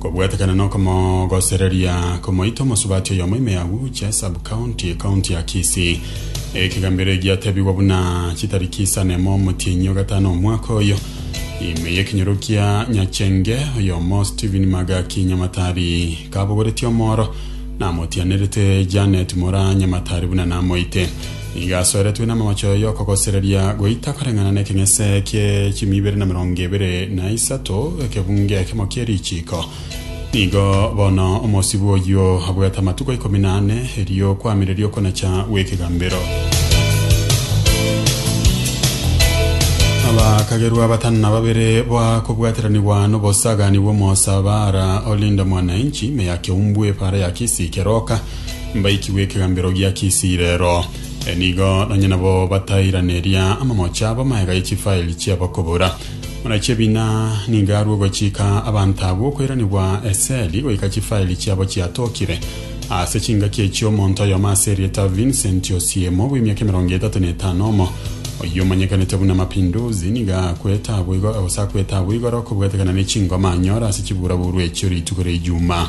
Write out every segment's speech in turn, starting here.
Kobwatekana n'okomogosereria komoita omosubati oyomo ime ya Uche sub county ekaunti ya Kisii. Ekegambero eki giatebigwa buna chitariki isano emo omotienyi ogatano omwaka oyo ime y'ekenyoro kia Nyachenge oyomo Stephen Magaki Nyamatari kabogoretie omoro namotianerete Janet Mora Nyamatari buna namoite. Nigo asoeretwe namamache oyo okogosereria goita koreng'ana nekeng'ese kie chimi ibere na merongo ebere na isato, ekebunge ekemo kie richiiko. Nigo bono omosibwa oyio abwate amatuko ikomi na ane, erio kwamireria okonacha gw'ekegambero. Abakagerwa batano na babere bwa kobwateranigwa nobosagani bw'omosabaara olinda mwananchi meya keumbwe para ya kisi keroka mbaikigwe ekegambero gia Kisirero. Nigo nonye nabo batairaneria amamocho abo amaega ye chifaeli chi'abakobora. Buna chi'ebina nigo arue ogochika abanto abwo okoiranigwa eseli goika chifaeli chiabo chiatokire. Ase chingaki echi omonto oyomo ase erieta Vincent Osiemo bw'emiaka emerongo etato na etano omo oyio omanyekanete buna Mapinduzi nigo akwete abwo igo- gose akwete abwo igoro kobwatekana ne chingoma anyore ase chiburaburu echio rituko ria Ijumaa.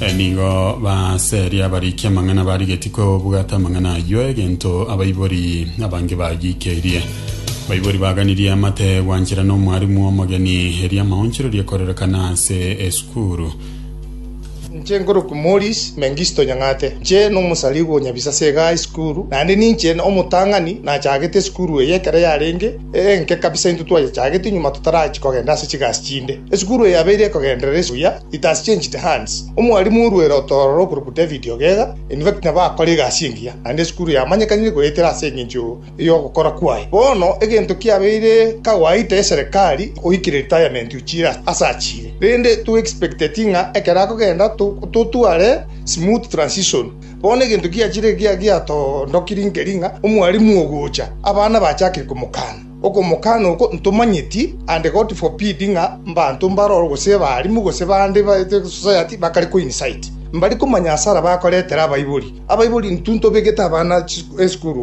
E, Nigo baseria abarikia amang'ana barigetie kwebwata amang'ana ayio, egento abaibori abange bagiikerie. Baibori baganirie amate gwanchera n'omwarimu omogeni, erio amaonchorori ekorerekana ase esukuru. Inche nkorokwa Maurice Mengisto Nyang'ate. Inche nomosarigwa o Nyabisase iga ase esukuru, naende ninche omotang'ani nachagete esukuru eye ekero yarenge enke kabisa intwe twayechagete nyuma totarachia kogenda ase chigasi chinde. Esukuru eye yabeire ekogenderera buya. It has changed hands. Omwalimu orwere otororo okorokwa David Ogega, in fact nabo akore egasi engiya, naende esukuru yamanyekanire goetera ase engencho y'ogokora kwaye. Bono egento kiabeire kawaita eserekari oikire retirement ochire ase achire, rende to expecteti ng'a ekero akogenda totware smooth transition. Bono egento kiachire ekiya giatoondokiri nkeri ng'a omwalimu ogocha, abana bachakire komokana. Okomokana oko ntomanyeti, and God forbid, ng'a mbanto mbaroro gose abaalimu gose bande ba society bakare koincite mbari komanya asara bakoretera abaibori. Abaibori intwe ntobegete abana esukuru iga.